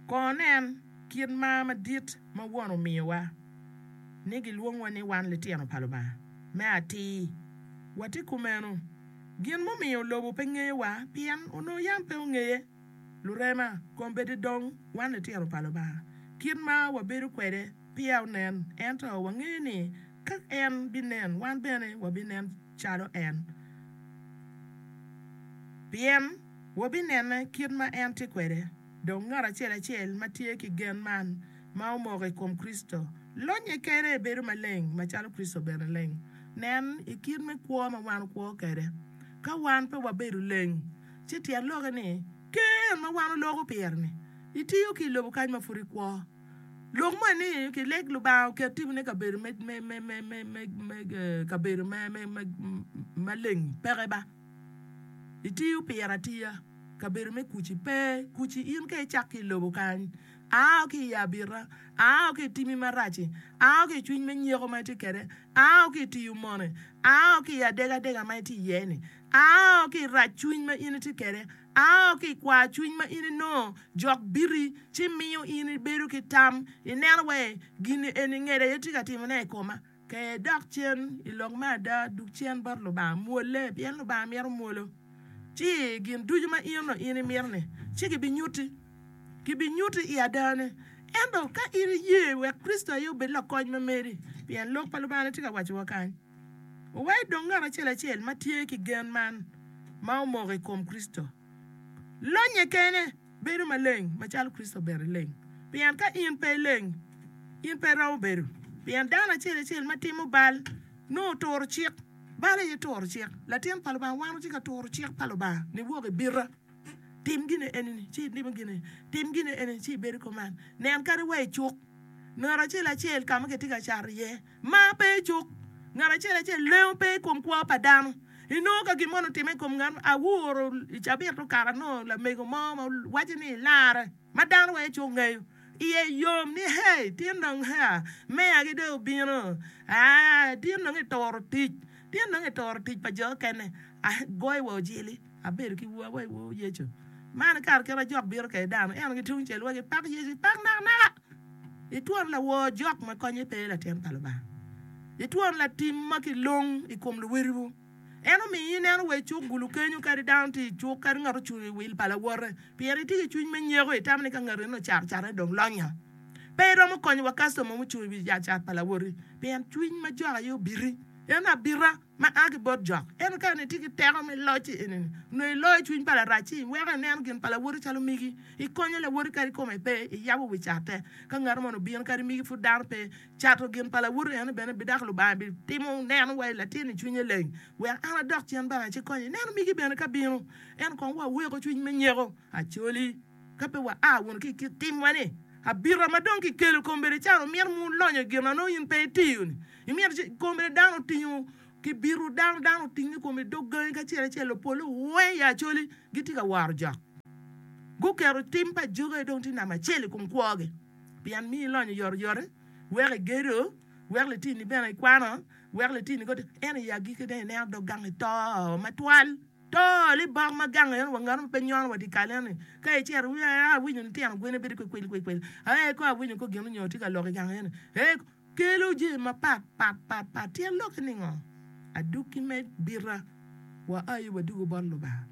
Kono nen kit mar madit ma Won omiyowa, ni gilwongwa ni wan litino pa Lubanga me atir. Wati kumeno, gin mumiyo lobo pe ngeyowa pien onongo yam pe ongeye. Lurema, kong bedi dong wan litino pa Lubanga kit ma wabedo kwede peya onen, ento wangeyo ni ka en binen wan bene wabinen calo en, pien wabinene kit ma en tye kwede. Dong ngat acel acel ma tye ki gen man ma omoko i kom Kricito, lonnye kene bedo maleng macalo Kricito bene leng. Nen i kit me kwo ma wan wukwo kwede. Ka wan pe wabedo leng, ci tyen lokke ni ker en ma wan wuloko pire-ni itiyo ki i lobo kany ma pud ikwo. Lok moni ni kileg Lubanga oket timoni i kabedo me kabedo maleng peke ba. Itiyo pire atiya. Kabedo me kuci pe. Kuci in ka icak ki i lobo kany, ao ki i abita, ao ki i timi marac-ci, ao ki i cwiny me nyeko ma itye kwede, ao ki i tiyo moni, ao ki i adegadega ma itye iye-ni, ao ki i rac cwiny ma in itye kwede, ao ki i kwar cwiny ma in inongo jok biri ci miyo in ibedo ki tam, ineno wai, 'Gin eni ngeda aye tye ka timone i koma. Ke dok cen i lok me ada, dug cen bot Lubanga, mwole, pien Lubanga mito mwolo. Ti i gin ducu ma in onongo in imito-ni, ci gibinyutti. Gibinyutti i adane. Ento ka in iye wek Kricito aye obed lakony ma meri, pien Lok pa Lubanga-ni tye ka wacciwa kany, wa idong ngat acel acel ma tye ki gen man ma omoko i kom Kricito. Lonnye kene. Bedo maleng macalo Kricito bene ileng, pien ka in pe ileng, in pe iromo bedo. Pien dano acel acel ma timo bal, nongo oturo cik. Bal aye turo cik. Latin pa Lubanga, wan watye ka turo cik pa Lubanga ni, Wok i bita, tim gine eni-ni, ci ilimo gine, tim gine eni-ni, ci ibedo i kom man. Nen kadi wa i cuk, ngat acel acel ka ma kitye ka cato iye. Mar pe i cuk ngat acel acel, lengo pe i kom kwo pa dano. Inongo ka gin moni otimme i kom ngat mo, awuru i cabit okato anongo lamego mo ma waco ni larre ma dano wai ci ongeyo, iye yom ni hei tin dong hea meyagi dong obino aa tin dong ituro tic, tin dong ituro tic pa jo mukene. A goyo wa ojili abedo ki wer wa iwor Yecu man ikato kit ma jok bino kwede dano ento ki tungcel wa gipak Yecu pak nakanaka. Litwon lawor jok ma konye pe latin pa Lubanga. Litwon latim ma kilong i kom luwotwu. En omiyo ineno wa i cuk gulu kenyo kadi dano tye i cuk kadi ngat ocung i wil pa lawote pien itye ki cwiny me nyeko, itamo ni ka ngat enoni ocato catone dong lonya. Pe iromo konyo wa kastoma mucung i wi ot cat pa lawoti pien cwiny ma jok aye obiti. En abita. ma a ki bot jok. Ento ka en itye ki teko me loc-ci eni-ni, nongo iloyo cwiny pa Larac-ci, iweko ineno gin pa lawoti calo migi, ikonyo lawoti kadi kome pe, iyabo wi catte. Ka ngati moni obino kadi migi pud dano pe, cato gin pa lawoti eni bene bidako Lubanga bitimo neno wa i latin-ni cwinye leng, wek an adok cen banga ci konye neno migi bene ka bino. Ento kong wa weko cwiny me nyeko, acoli, ka pe wa a wunu ki i kit timwa-ni. Abita ma dong kikelo kombeddi caro myero mu lonyo gin ma nongo in pe itiyo-ni. Imito ci kom bene dano otingo ki bito dano, dano oting ni kom i dog gangi ki acel acel, lopole weng i Acholi gitye ka waro jok. Guketo tim pa ajogi aye dong tye namba acel i kom kwogi pien miyo ilonyo oyotoyote, weko igedo, weko litini bene ikwano, weko litini kodi ento i agikki dong ineno dog gangi to matwal, to ni bok ma gang eno wa nganu ma pe nyono wa dye kal eno-ni ka icito iwiyo aye awinyo litino gwine bedo ki kwil kwil kwil, aye kong awinyo kong gin onyo tye ka lok i gang eno-ni, ee. kelo jami mapat pat pat pat. Tyen lokke ningo? Adwogi me bita wa aye wadwogo bot Lubanga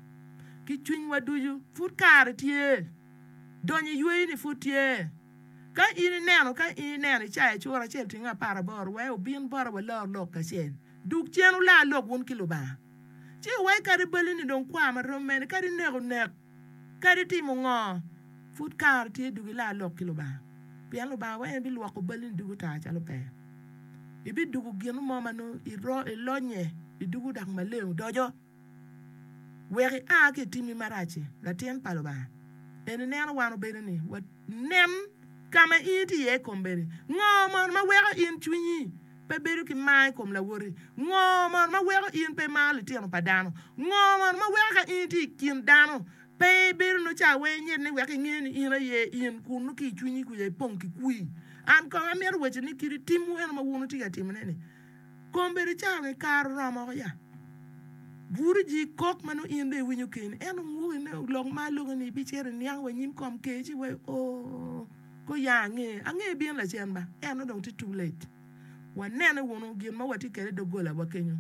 ki cwinywa ducu. Pud kare tye, donyo i yweyoni pud tye. Ka in ineno ka in ineno i cayo cura acel otyeno apar aboro, we obin bota walor lok kacel. Dug cen wula lok wun ki Lubanga. Ci iwai kadi balini dong kwa ma rom mene, kadi neko nek. Kadi timo ngo, pud kare tye dok ila lok ki Lubanga, pien Lubanga weng bilwoko balini ducu tar calo pe. Ibidugo gino mo ma nongo ilonye i ducu dok maleng odoco. Wek ia ki i timmi marac-ci, latin pa Lubanga. En ineno wan obedo ni wanen ka ma in itye iye i kombeddi. Ngo mono ma weko in cwinyi Pe bedo ki mar i kom lawoti. Ngo mono ma weko in pe imaro litino pa dano? Ngo mono ma weko ka in itye i kin dano pe ibedo nongo ca wai inyit ni wek inge ni in aye in kun nongo ki i cwinyi kuca ipong ki kwir? An kong amito waco ni kit timwu eno ma wun wutye ka timone ni, Kombeddi ca weng kare oromo woko ya. Bwuru ji kok ma nongo in dong iwinyo keni. Ento ngwok ine lok ma aloke ni ibicito iniang wa i nyim kom Ker ci iwaco, Ooh! Ko ya ange, ange ibino lacen ba, ento dong tye too late. Wanene wunu gin ma watye kwede i doggolawa kenyo.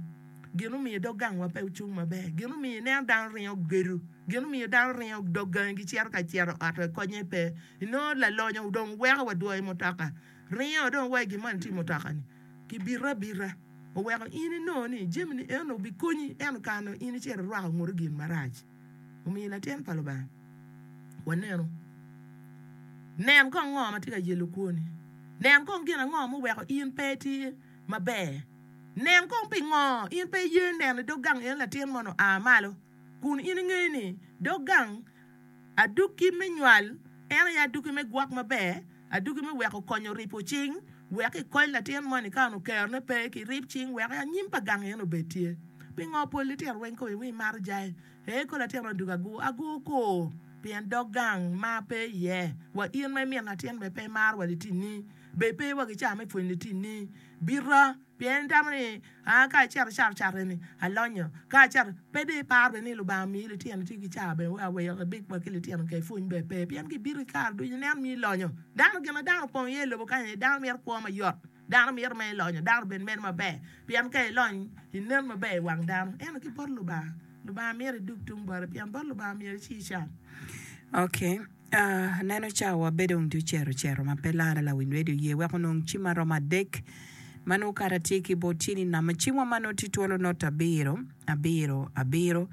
Gin omiyo dog gangwa pe ocung maber. Gin omiyo ineno dano ringo gedo. Gin omiyo dano ringo dog gangi gicito ka cito i ot wek konye pe. Inongo lalonyo dong weko wa dwoyo mutoka, ringo dong wa i gin moni tye i mutoka-ni ki bito abita. Oweko in inongo ni jamini eno obikonyi, ento kare nongo in icito irwako ngute gin marac. omiyo i latin pa Lubanga. Wanenu. Nen kong ngo ma tye ka yelo kwoni. Nen kong gin ango ma oweko in pe itye maber. Nen kong pingo in pe iye neno i dog gang en latin moni oa malo, kun in ingeyo ni dog gang adukki me nywal en aye adukki me gwok maber Adugi me weko konyo ripo cing wek ikony latin mo ni ka onongo kerone pe, kirib cing wek i anyim pa gang en obed tye. Pingo pol litino weng koyo ni maro jai? Ee, ko latin ni adugi agur agur kur, pien dog gang mar pe iye. Wa in ma imito latin bene pe imaro wa litini, bed pe wa ki cawa me pwonyo litini. Bita. Pien itamo ni, 'Aa ka acito cato catte-ni, alonyo. Ka acito, pe dong iparo bene ni Lubanga omiyi litino tye ki cawa bene wek aweyo kibik wa ki litino kek pwony bene pe. Pien kibito ki kare ducu, ineno ni ilonyo. Dano, gin ma dano opong iye i lobo kany aye, dano mito kwo mayot, dano mito mere ilonyo, dano obed mere maber. Pien ka ilony, inen maber i wang dano. Ento ki bot Lubanga, Lubanga mito idog tung bote, pien bot Lubanga myero ici ican. Aneno cawa bedo wun tye ocero ocero ma pe larre lawiny redio oye weko onong cim ma romo adek ma nongo kare atye ki bot cin i namo cimwa ma nongo tye twolo not abiro abiro abiro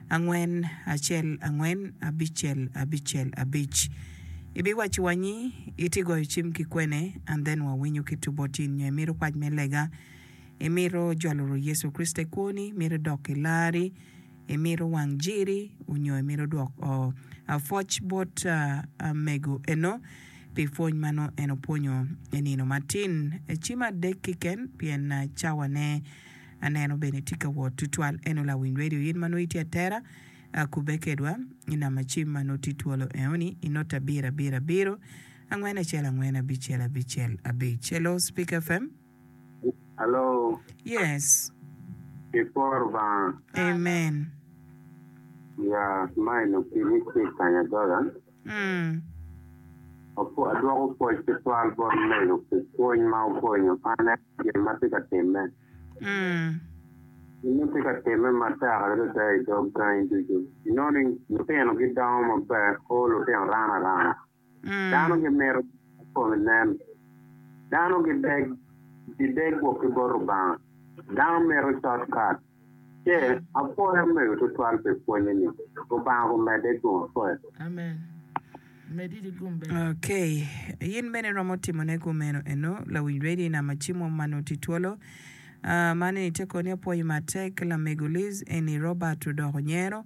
angwen acel angwen abicel abicel abic ibiwaco wa ni itye goyo cim ki kwene and then wawinyo ki two bot cin nyo imito pac me lega imito jolo Rwot Yecu Kricito i kwoni imito idok ki larri Imito wang jiri onyo imito dwok o? A Pwoc bot amego eno pi pwony ma nongo en opwonyo i nino matin. Ecim adek kiken pien cawane aneno bene tye ka wot tutwal. Eno lawiny radio in ma nongo itye atera, a kubbe kedwa i nam acim ma nongo tye twolo eoni i note abiro abiro abiro, angwen acel angwen abicel abicel abic. Hello Speak FM. Hello. Yes. Kiporo banga. Amen. Ya mai no kini ki kanya dola. Mm. Apo adwoko pwol ki twal bot mego ki pwony ma okonyo an gin ma tye ka timme. Mm. Gin ma tye ka timme matek adada i dog gangi ducu. Inoni lutino gidongo maber, o lutino rana rana. Dano gimito ma kome nen. Dano gideg gideg gwok ki bot Lubanga. Dano mito short cut. Ce, apwoyo omego tutwal pi pwonye ni. Lubanga omedde i kom apwoya. Ok. In bene iromo timone kumeno eno, lawiny radio nam acim wa ma noti twolo. Aa, man eni te koni apwoyi matek, lamego Liz, eni Robert odoko nyero.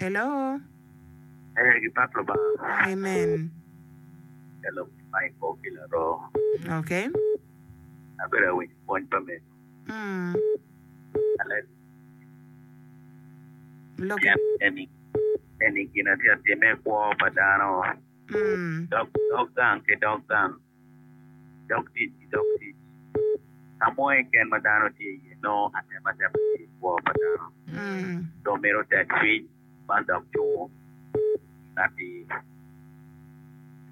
Hello. Ee, gi pat Lubanga. Amen. Hello, ma i kor ki laroo. Okay. Abedo awinyo pwony pa mego. Mm. Alen. Lok. Pien eni, eni gin atye atime kwo pa dano. Mm. Dog, dog gang ki dog gang. dok tic ki dog tic. Ka mo keken ma dano tye iye nongo atematema tye i kwo pa dano, dong mito tek cwiny man dok cungo gin atir.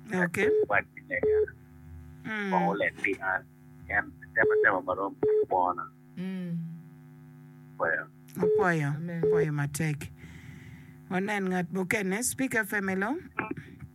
Tek wac ni lega kong oleg pi an, pien atematema ma romo tye kwona. Apwoyo. Apwoyo, apwoyo matek. Wanen ngat mukene, Speaker Family.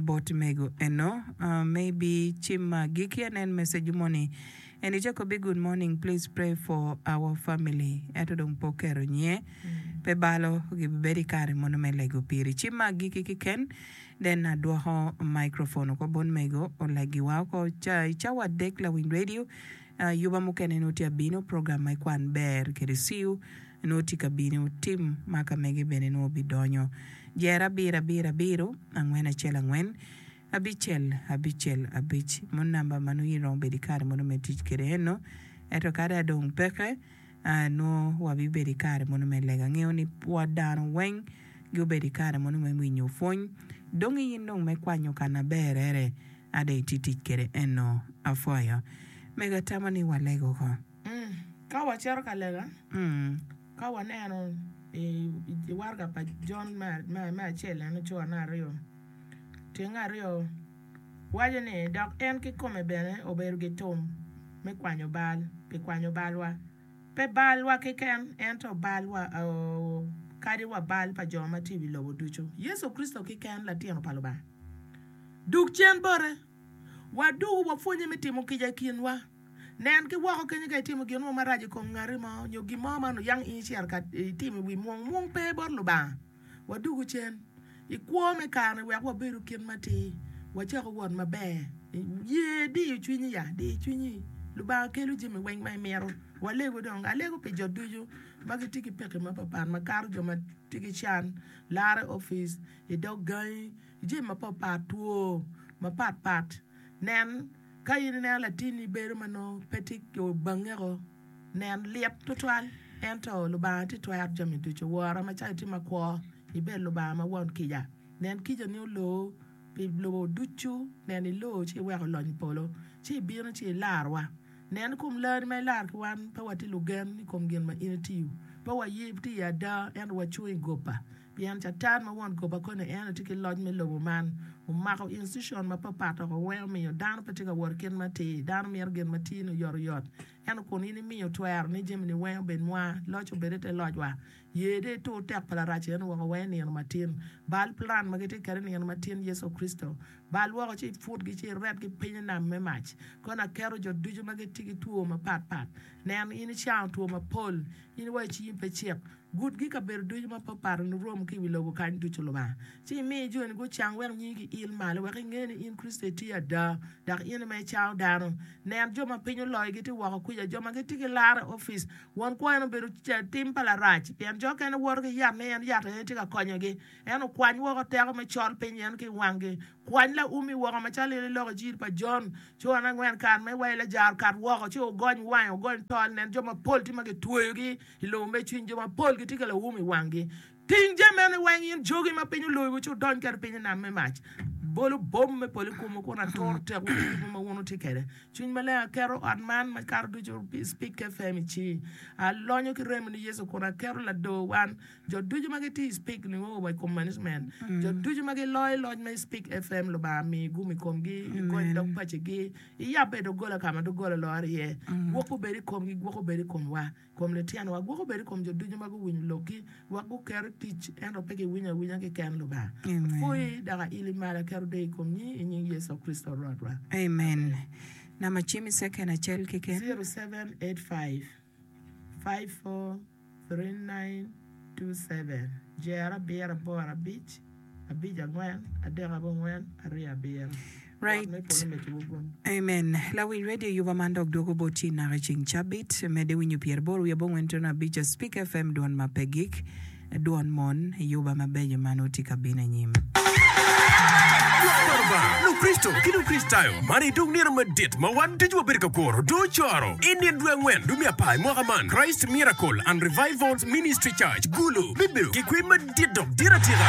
bot mego eno maybe cim ma agiki an en message moni and i cako bi good morning please pray for our family ento dong pe oketo nyinge pe balo gibibedo i kare mono me lego piri cim ma agiki kiken then adwoko microphone oko bot mego olegi wa oko ca i cawa adek lawiny radio Ayuba mukene nongo tye ka bino, program me kwan ber kede ciu nongo tye ka bino, tim ma ka mege bene nongo bidonyo. Jer abiro abiro abiro, angwen acel angwen, abicel abicel abic, mono namba ma nongo in iromo bedo ki kare mono me tic kede eno. Eto kadi adong peke, nongo wabibedo ki kare mono me lega. Angeyo ni bot dano weng giobedo ki kare mono me winyo pwony, dong in dong me kwanyo ka na berere. Ada itye tic kede eno apwoyo. Mego atamo ni waleg oko. Ka wacito ka lega, ka waneno i waraga pa Jon me acel en ocoo na aryo tyeng aryo waco ni, Dok en kikome bene obedo gitum me kwanyo bal pi kwanyo balwa, pe balwa keken, ento balwa oo, kadi wa bal pa jo ma tye i wi lobo ducu. Yecu Kricito keken, Latino pa Lubanga, Dug cen bote. Waduku wapwonnye me timo kica i kinwa. Nen ki woko kenyo ka itimo gin mo marac i kom ngati mo nyo gin mo ma nongo yang in icito ka itimo i wi mwong. Mwong pe bot Lubanga. Waduku cen i kwo me kare-ni wek wabedu kit matir, wacako wot maber. Ye diyo cwinyi ya, di cwinyi. Lubanga kelo jami weng ma imito. Walegu dong. Alego pi jo ducu ma gitye ki pekki mapapat makato jo ma tye ki can, laro i opic, i dog gangi. Jami mapatpat two mapatpat. Nen, Ka in ineno latinni bedo ma nongo pe tye ki bangeko, nen, lit tutwal. Ento Lubanga tye twero jami ducu. Wora, macalo itye makwo, ibed Lubanga ma won kica. Nen, kicani oloo pi lobo ducu. Nen, iloo ci iweko olony i polo, ci ibino ci ilarowa. Nen, i kom larri ma ilaro ki wan, pe watye lugen i kom gin ma in itiyo. Pe waye tye i ada, ento wacung i goba. Pien Catan ma won goba koni en aye tye ki loc me lobo man. Omako institution mapatpat woko weng omiyo dano pe tye ka wot i kit matir. Dano mito gin matir ni oyotoyot. Ento kun in imiyo twero ni jamini weng obed nwa, loc obed i te locwa. Ye dong itur tek pa Larac eno woko weng i nino matin. Bal plan ma gitye kede i nino matin, Yecu Kricito. Bal woko ci iputgi ci iretgi piny i nam me mac. Kono aketo jo ducu ma gitye ki two mapatpat. Nen, in icango two mapol. In wa i cingi pe cik. Gutgi i kabedo ducu ma pe opato nirom ki i wi lobo kany ducu Lubanga, ci imi joni gucang wek nyingi giil malo, wek ingen ni in Kricito itye ada, dok in ma icawo dano. Nen, jo ma piny oloyo gitye woko kwica, jo ma gitye ki lar i opic. Won kwo en obedo tim pa Larac, pien jo okene woto ki yat ni en yat aye tye ka konyogi. En okwany woko teko me col piny yen ki i wanggi. Kwany laumi woko macalo in iloko jiri pa Jon, ci wan angwen kare ma iwayo lajaro kat woko, ci ogony wange, ogony tol, nen, jo mapol tye ma gitweyogi. I lobo me cwiny jo mapol gitye ka lawum i wanggi. Ting jami meno weng in jogi ma piny oloyowu ci wudony kwede piny i nam me mac. Bolu bom me polo i komwu kun aturo tekwu ki kit mo ma wun wutye kwede. Cwiny Maleng aketo ot man makato ducu pi Spik FM i ci. Alonyo ki remo ni Yecu kun aketo ladoo wan, jo ducu ma gitye i Spik Niwowo wa i kom management. Jo ducu ma giloyo loc ma i Spik FM Lubanga migi gum i komgi, gigony dog pacigi, Iyabbe doggola ka ma doggola lor iye, gwok gubed i komgi, gwok obed i komwa, i kom lityenwa, gwok obed i kom jo ducu ma guwinyo lokki, wek guker i tic, ento pe giwinyo awinya keken, Lubanga. Apwoyi, dok aili malo, aketo deyo i kom nyingi, i nying Yecu Kricito Rwotwa. Amen. Amen. Number cim i second acel keken. 0785. 543927 Jer abiro aboro abic abic angwen adek abongwen aryo abiro Wot me polo me cobo gun. Amen lawiny radio yuba man dok dwogo bot yi naka icing cabit. Mede winyo pyeraboro wiye abongwen tuno abic Speak FM dwon ma pe gik. Dwon mon ayuba mabeco man wutye ka bino anyim. Lwak pa Lubanga, Lukricito ki Lukricitayo, man aye dong nino madit ma wan ducu wabedo ka kuro doo coro. I nino dwe angwen dumi apar i mwaka man, Christ Miracle and Revivals Ministry Church, Gulu, bibedo ki kwee madit dok dit atika.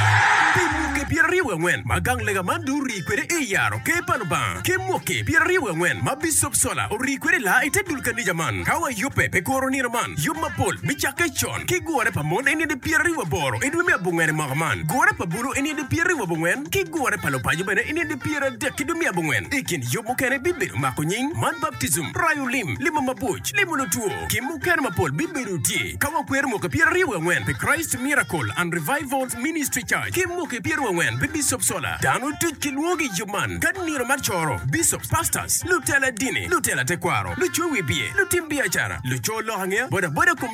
Pi mwoki pyeraryo wi angwen ma gang lega man dong orii kwede ei yaro Ker pa Lubanga, ki mwoki pyeraryo wi angwen ma Bicop Sola orii kwede laa i te dul kanica man, ka wayubbe pi kuro nino man, yub mapol bicakke con. ki gure pa mon eni nidi pyera ribu aboro idwe me abongwen imwaka man, gure pa bulu eni nidi pyera ribu abongwen, ki gure pa lupaco bene eni nidi pyera adek idwe me abongwen. Ikin yub mukene bibedo mako nying, man baptism, rayo lim, limo mabuc, limo lutwo, ki mukene mapol bibedo tye ka wakwero mwaki pyera ribu angwen pi Christ Miracle and Revivals Ministry Church ki mwaki pyera ribu angwen pi Bishop Sola. Dano duc ki lwongo gi iyub man ka nino mar coro, Bishops, Pastors, lutela dini, lutela tekwaro, lucowi biye, lutim biacara, luco lok angeya, boda boda,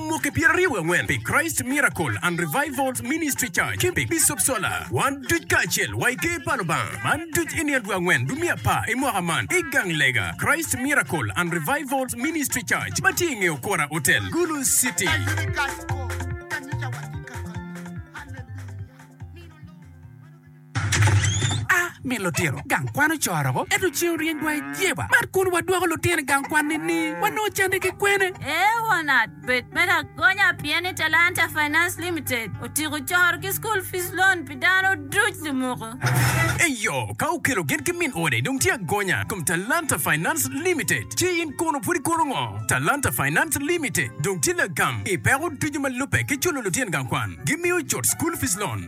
Mwaki pyeraryo wangwen pi Christ Miracle and Revivals Ministry Church ki pi Bishop Sola. Wan duc kacel wa i Ker pa Lubanga man duc i nino dwe angwen dwe me apar i mwaka man i gang lega Christ Miracle and Revivals Ministry Church ma tye i nge Okora Hotel, Gulu City. A Mi lutino gang kwan ocoro-gu, ento ceng oryeny dwai i jeba. Bad kun wadwoko lutino i gang kwan ni-ni, wanongo cande ki kwene? Ee wanat, bed me lagonya pien ni Talanta Finance Limited otyeko coro ki school fees loan pi dano duc limuku. Eyo, ka okelo gin ki min ode dong tye agonya i kom Talanta Finance Limited. Ci in kono pud ikono ngo? Talanta Finance Limited dong tye lagam i peko ducu ma lubbe ki culo lutino gang kwan. Gimiyo cut school fees loan.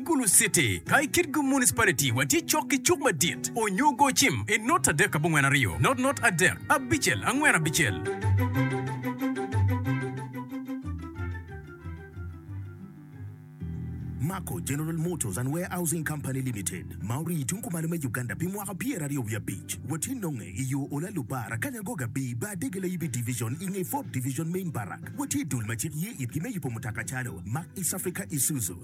Gulu City, ka i kit-gu Municipality wa tye cok ki cuk madit onyo go cim i not adek abongwen aryo, not not adek abicel angwen abicel. Mako General Motors and Warehousing Company Limited ma orii tung kumalo me Uganda pi mwaka pyer aryo wiye abic wa tye nonge i yo Ola Lubar akanya Gogo Abii bar Dege Layibi Division i nge Ford Division Main Barrack wa tye i dul ma cik ye itgi me yubo mutoka calo Mark East Africa Isuzu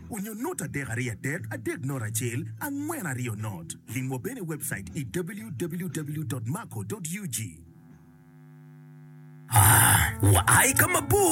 Onyo not adek aryo adek adek not acel angwen aryo not. Lim wa bene i webcait i www.maco.ug. Aa, wua i ka mabor.